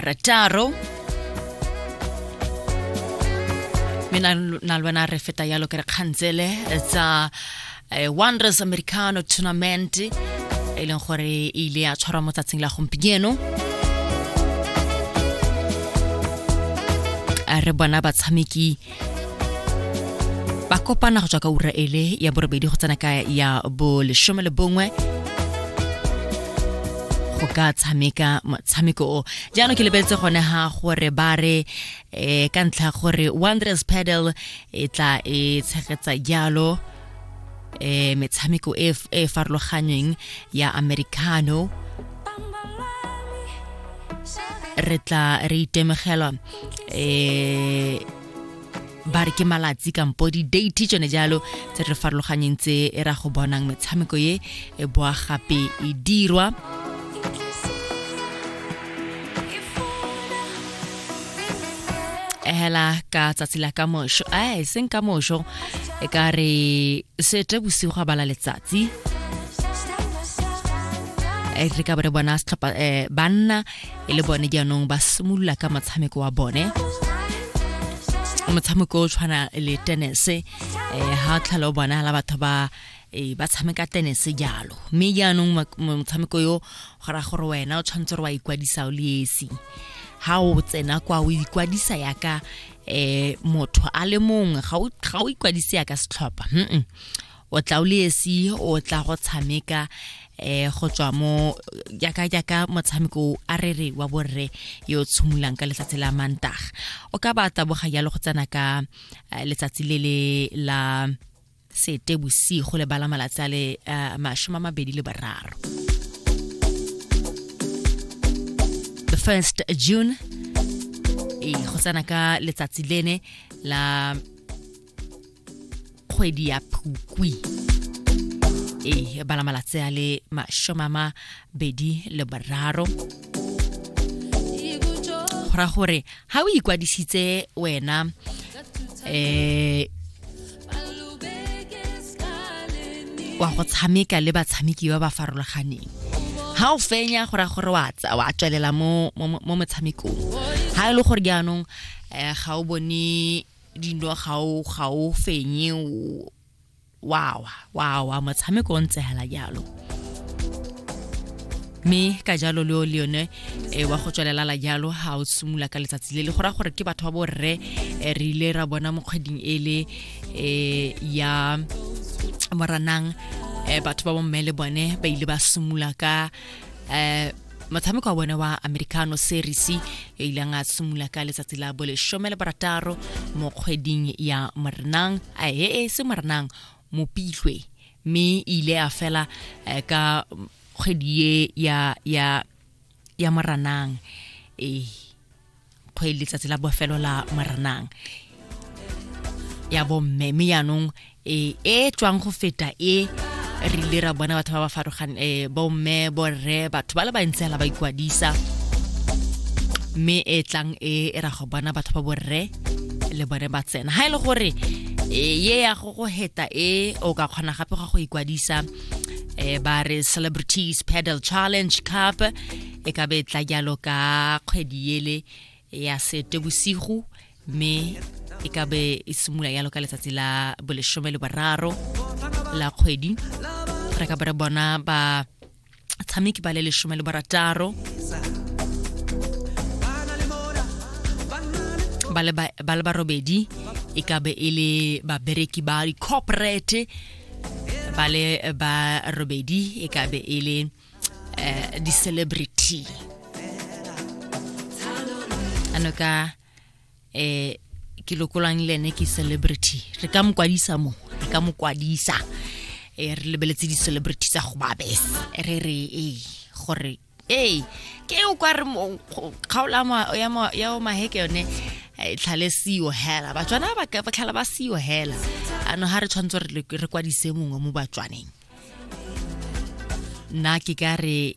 rataro mme na na le wena re feta yalo ke re kgantsele tsa eh, wonders americano tournament e leng gore e ile ya tshwarwa mo tsatsing la gompieno a re bona batshameki ba kopana go tswa ka ura ele ya borobedi go tsena ka ya bolesome le bongwe go ka tshameka motshameko o jaanong ke lebeletse gone ga gore ba re um ka ntlha gore wonders pedal e tla e tshegetsa jalo eh metshameko e e farologanyeng ya americano re tla re itemogela eh ba re ke malatsi kampo di-date tsone jalo tse re farologanyeng tse e ra go bonang metshameko e e boa gape e dirwa hela ka tsatsi la ka mošo a e seng ka mošo e ka re sete bosigo ga bala letsatsi e re ka bore bona setlhopha eh, banna e le bone jaanong ba simolola ka motshameko wa bone motshameko o tshwana le tenese um eh, ga o tlhale o bona la batho ba e ba tshameka tenese jalo mme jaanong motshameko yo go raya gore wena o tshwanetse gore wa ikwadisa o le esi ha o tsena kwa o ikwadisa yaka eh motho a le mongwe ga o ga o ikwadise yaka setlhopha mm o tla o le esi o tla go tshameka eh go tswa mo yaka yaka motshameko a re re wa borre yo tshumulang ka letsatsi la mantaga o ka ba taboga yalo go tsena ka eh, letsatsi le le la sete bosigo le bala malatsi a le uh, mashome a mabedi le bararo the first june e go tsena ka letsatsi lene la kgwedi ya phukwi e bala malatsi a le mashome a mabedi le bararo go ra gore ga o ikwadisitse wena um wa go tshameka le batshameki ba ba farologaneng ga o fenya gore gore wa tswelela mo motshamekong ga e le gore jaanong um ga o bone dino ga o fenye wawa wawa motshameko o ntse fela jalo mme ka jalo leo le yone e wa go tswelela la jalo ga o simolola ka letsatsi le le go raya gore ke batho ba borre eh, re ile ra bona mo kgweding e le eh, ya moranang eh, batho ba bomme le bone ba ile ba simolola ka eh, motshameko wa bone wa americano series e ileng a simolola ka letsatsi la boleshome le barataro mo kgweding ya moranang a e e se moranang Mopitlwe mme e ile ya fela eh, ka kgwedi e ya ya ya Moranang eh kgwedi letsatsi la bofelo la Moranang ya bomme mme yaanong e e tswang go feta e re ile ra bona batho ba ba farogane eh, bomme borre batho ba le bantsi fela ba ikwadisa mme e tlang e e ra go bona batho ba borre le bone ba tsena ga e le gore e ye ya go go heta e o ka kgona gape ga go ikwadisa eh ba re celebrities pedal challenge cup e ka be tla jalo ka kgwedi ele ya sete bosigo mme e ka be e simolola jalo ka letsatsi la boleshome le boraro la kgwedi re ka be re bona ba tshameki ba le lesome le barataro ba le barobedi e ka be e le babereki ba di-corporate ba le barobedi e ka be e le um di-celebrity ano ka eh ke lokolwang le ene ke celebrity re ka mokwadisa mo re ka mokwadisa e re lebeletse di-celebrity tsa go babes re re ee gore ee ke o kwa re kgaolo ya o maheke yone e tlhale seo hela batswana ba tlhala ba seo hela ano ga re tshwanetse re kwadise mongwe mo batswaneng nna ke ka re